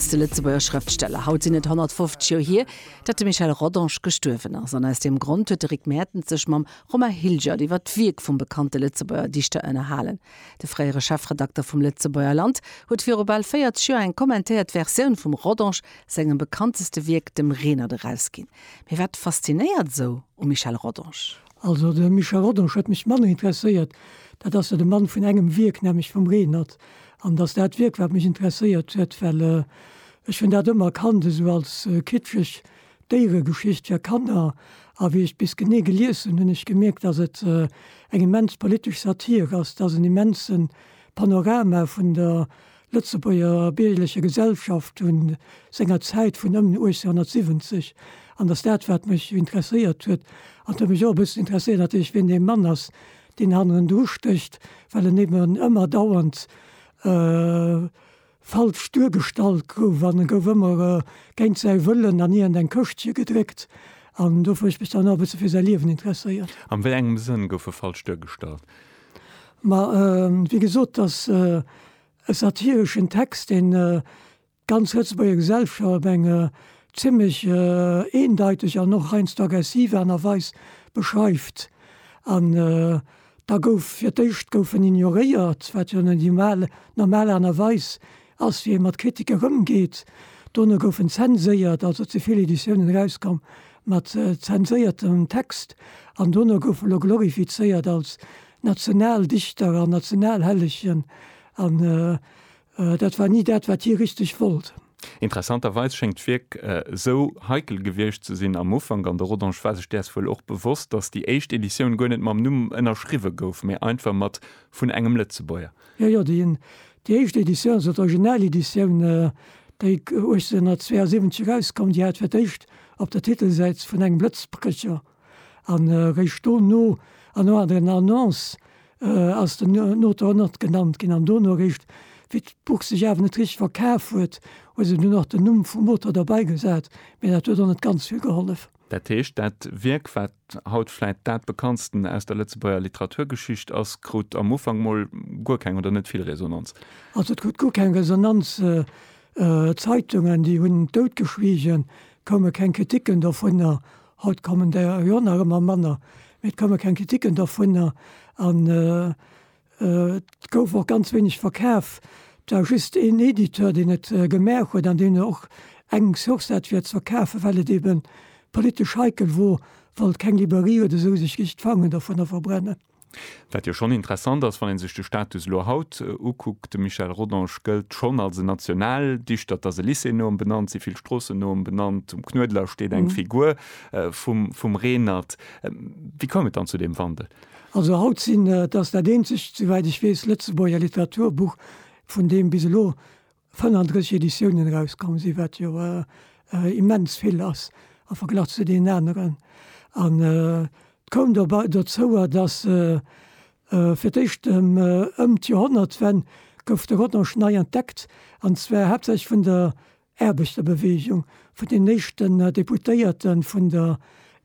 De Lëtzebuerger Schrëftsteller, haut sinn et 150 Joer hier, datt de Michel Rodange gestuerwen ass. An aus deem Grond huet de Rick Mertens sech mam Romain Hilgert iwwer d'Wierk vum bekannte Lëtzebuerger Dichter ënnerhalen. De fréiere Chefredakter vum Lëtzebuerger Land huet viru bal 40 Joer eng kommentéiert Versioun vum Rodange sengem bekannteste Wierk, dem Renert, erausginn. Mee wat faszinéiert esou um Michel Rodange? Also de Michel Rodange huet mech manner interesséiert. Dat ass jo de Mann vun engem Wierk, nämlech vum Renert. An dass dat Wierk, wat mech interesséiert huet, well ech hunn dat ëmmer kannt esou als kitscheg Déieregeschicht fir Kanner. A wéi ech bis genee gelies hunn, hunn ech gemierkt, dass et eng immens politesch Satire ass, dass en immense Panorama vun der Lëtzebuerger biergerlecher Gesellschaft vu senger Zäit vun ëm 1870 an datt dat wat mech interesséiert huet, an et huet mech och e bëssen interesséiert natierlech wien dee Mann ass, deen hannendru stécht, well en eben ëmmer dauernd falsch duergestallt gouf an e gouf ëmmer géint säi Wëllen an iergend eng Këschtche gedréckt an dofir hu ech mech dann och e bësse fir säi Liewen interesséiert. An wéi engem Sënn gouf e falsch duergestallt? Ma wéi gesot, dass e satireschen Text, deen d'ganz Lëtzebuerger Gesellschaft op eng zimmlech eendeiteg an och heiansdo aggressiv Aart a Weis beschreift. An da gouf fir d'éischt gouf en ignoréiert, wat jo net di mal normal Aart a Weis Ass wéi ee mat Kritiker ëmgeet. Dono goufen zenséiert, also ze vill Editiounen erauskomm mat zenséiertem Text an dono goufe elo glorifizéiert als Nationaldichter an Nationalhellegen an dat war ni dat wat hie richteg wollt. Interessanterweis schéngt d'Wierk esou heikel gewiescht ze sinn am Ufank, an de Rodange war sech däers wuel och bewosst, datt déi éischt Editioun guer net mam Numm ënnerschriwwe gouf, mee einfach mat vun engem Lëtzebuerger. Jo, jo, déi éischt Editioun, also d'Original-Editioun, déi 1872 erauskoum, déi hat fir d'éischt op der Titelsäit vun engem Blëtzbrécher an eréischt dono an no der Annonce ass den Auteur och nach genannt ginn. An dono eréischt, wéi d'Buch sech awer net richteg verkaf huet, hu se dunn och den Numm vum Auteur derbeigesat, mä dat huet och net ganz vill gehollef. Dat heescht, dat Wierk, wat haut vläit dat bekanntsten aus der Lëtzebuerger Literaturgeschicht ass, krut am Ufank mol guer keng oder net vill Resonanz. Also et krut guer keng Resonanz. Zeitungen, déi hunn doutgeschwiegen, koume keng Kriticken dovunner. Haut kommen der jo nach ëmmer manner, mee et koume keng Kriticken dovunner. An Et gouf och ganz wéineg verkaf. Et war just een Editeur, deen et gemaach huet an deen och eng Source hat fir et ze verkafen, well et eebe politesch heikel wor, wollt keng Librairie oder esou sech iech d'Fangen dovunner verbrennen. Wat jo schonn interessant ass, wann ee sech de Status elo haut ukuckt. De Michel Rodange gëllt schonn als en Nationaldichter. Et ass e Lycée no em benannt, si vill Stroossen no em benannt, um Knuedler steet eng Figur vum Reenert. Wéi koum et dann zu deem Wandel? Also haut sinn, et ass dat eenzegt, souwäit ech weess, Lëtzebuerger Literaturbuch, vun deem bis elo 35 Editiounen erauskomm sinn, wat jo immens vill ass am Verglach zu deenen aneren. An et koum dobäi dozouer, datt fir d'éischt ëm d'Joerhonnertwenn gouf de Rodange nei entdeckt, an zwar haaptsächlech vun der Aarbechterbeweegung, vun den éischten Deputéierte vun der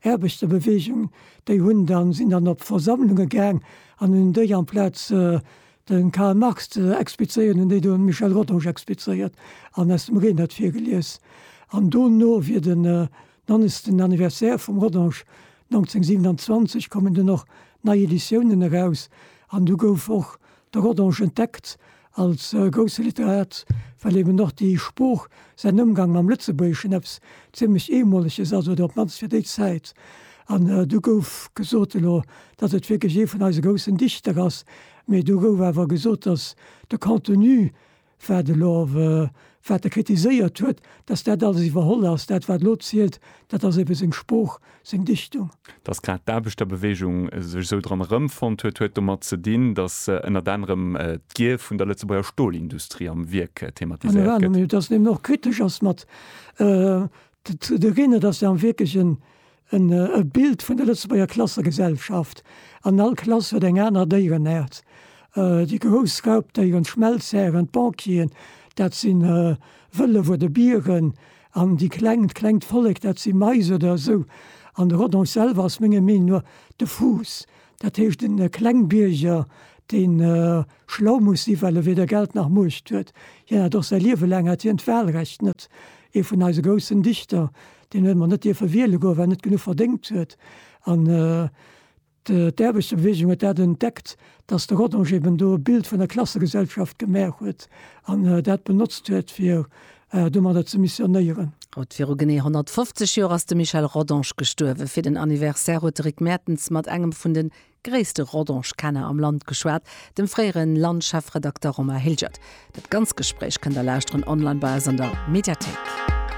Aarbechterbeweegung, déi hunn dann, sinn dann op Versammlunge gaang an hunn déi amplaz de Karl Marx ze explizéieren, hunn déi do de Michel Rodange explizéiert an aus dem Renert virgelies. An dono wier den 90. Anniversaire vum Rodange 1927, kommen dann och nei Editiounen eraus an du gouf och de Rodange entdeckt Als grousse Literat, well eben och déi Sprooch, säin Ëmgang mam Lëtzebuergeschen eppes zimlech Eemoleges ass, oder op d'mannst fir déi Zäit. An do gouf gesot elo, datt et wierklech ee vun eise groussen Dichter ass, mee do gouf awer gesot, datt de Contenu, wat elo Wat e kritiséiert huet, datt dat alles iwwerholl ass, dat wat elo zielt, dat ass ebe seng Sprooch, seng Dichtung. Datt grad d'Aarbechterbeweegung sech esou dran erëmfonnt huet, huet domat ze dinn, datt ënnert anerem d'Gier vun der Lëtzebuerger Stolindustrie am Wierk thematiséiert gëtt. Datt en eben och kritesch ass mat de Reenerdassen am Wierk. En Bild vun der Lëtzebuerger Klassegesellschaft. An all Klass huet eng aner Déierenaart. Déi grouss Raubdéieren, d'Schmelzhären, d'Banquieren, dat si Wëllef oder Bieren. An déi kleng, d'klengt Vollek, dat si Mais oder esou. An de Rodon selwer ass menger Meenung no de Fuuss. Dat heescht en Klengbierger, deen schlau muss sinn, well e weder Geld nach Muecht huet. Hien hat och säi Liewe laang hat hien d'Wahlrecht net. Ee vun eise groussen Dichter, deen huet mer net dierfe wiele goen, well en net genuch verdéngt huet. An d'Aarbechterbewegung huet dat entdeckt, datt de Rodange eben do e Bild vun der Klassegesellschaft gemaach huet an dat benotzt huet, fir domadder ze missionéieren. Haut viru genee 150 Joer ass de Michel Rodange gestuerwen. Fir den Anniversaire huet de Rick Mertens mat engem vun de gréisste Rodange-Kenner am Land geschwat, dem fréiere Land-Chefredakter Romain Hilgert. Dat ganz Gespréich kënnt der lauschteren online bei eis an der Mediathéik.